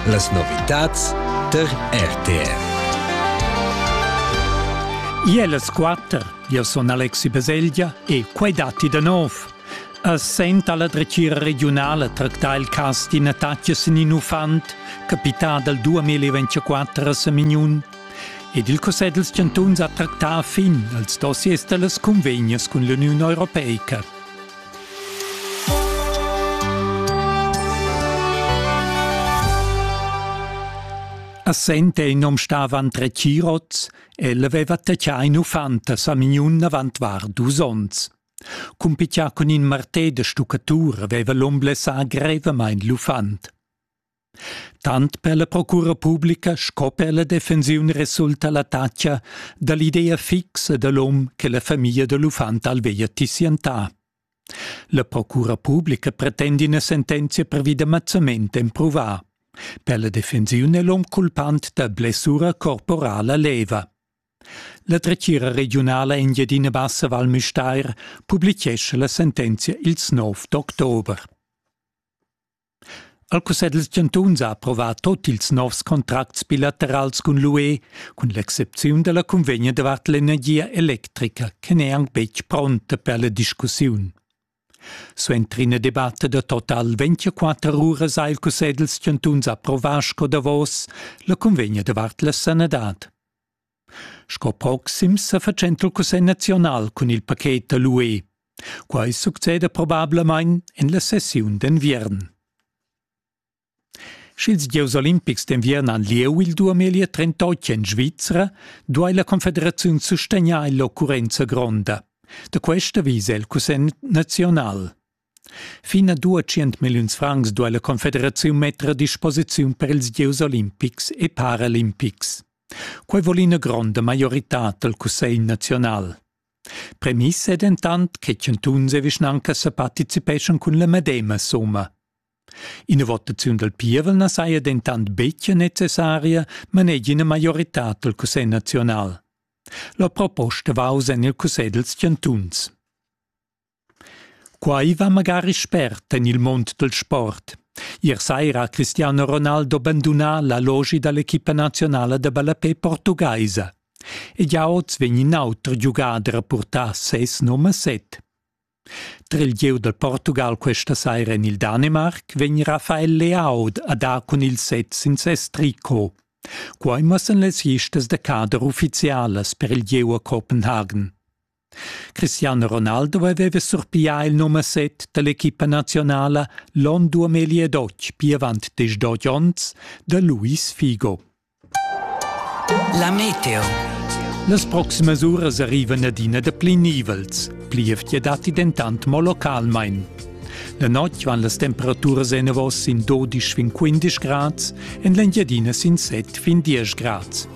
Las novitads tar RTR. Iel es quatter, io sun Alexi Baselgia e quai datti da nov. A senta la dretgira regiunala tracta il cas d'ina tatgas in in uffant, capità dal 2024 a Samignun. Ed il Cussegl dels Chantuns ha tractà fin als dossiers da las convegnas cun l'Uniun Europeica. A Sente in nom stavan tre chirots, el aveva taccià in uffant a Samignun avant var dus onns. Cumpitià cun in martè da stuccatur aveva l'um blessà grevamain l'uffant. Tant per la procura publica sco per la defensiun resulta l'attacca da l'idea fixa da l'um che la famiglia da l'uffant alveia tissientà. La procura publica pretende ina sentenzia pervi da mazzament emprovà. Per la defensiun è l'um culpant da blessura corporala leva. La dretgira regiunala Engiadina Bassa Val Müstair publichescha la sentenzia ils 9 d'october. El cussegl dals chantuns ha approvà tut ils novs contracts bilaterals cun l'UE, cun l'excepziun da la cunvegna davart l'energia electrica che n'è anc betg pronta per la discussiun. Suenter ina debatta da total 24 uras ha il cussegl dals chantuns approvà sco davos la cunvegna davart la sanadad. Sco proxims sa fatschenta il Cussegl naziunal cun il paket da l'UE. Quai succeda probablamain en la sessiun d'enviern. Sch'ils gieus olimpics d'enviern han lieu il 2038 en Svizra, duai la Confederaziun sustegnair l'occurrenza gronda. Da questa visa il Cussegl naziunal. Fin a dua tschient milliuns francs duai la Confederaziun metter a disposiziun per ils gieus olimpics e paralimpics. Quai vul ina gronda maioritad dal Cussegl naziunal. Premiss è dentant che chantuns e vischnancas sa participeschan cun la medema summa. Ina votaziun dal pievel na saja dentant betg necessaria, manegia ina maioritad dal Cussegl naziunal. La proposta va oz en il Cussegl dals chantuns. Quai va magari spert en il mund dal sport. Ier saira ha Cristiano Ronaldo bandunà l'allogi da l'equipa nazionala da ballapè portugaisa. Ed jau oz vegn in auter giugader a purtar ses num a set. Tra il gieu dal Portugal questa saira en il Danemarc vegn Rafael Leao a dar cun il set sin ses tricot. Quai mussan las listas da cader uffizialas per il gieu a Copenhagen. Cristiano Ronaldo aveva surpiglià il numer 7 da l'equipa nazionala l'onn 2012, pir avant diesch dod onns, da Luis Figo. La meteo. Las proximas uras arrivan adina da pli nivels. Plievgia datti dentant mo localmain. La notg van las temperaturas enavos sin 12 fin 15 grads, en l'Engiadina sin 7 fin 10 grads.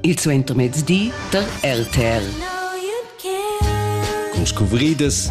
il suentermezdi tar RTL. Con scuvridas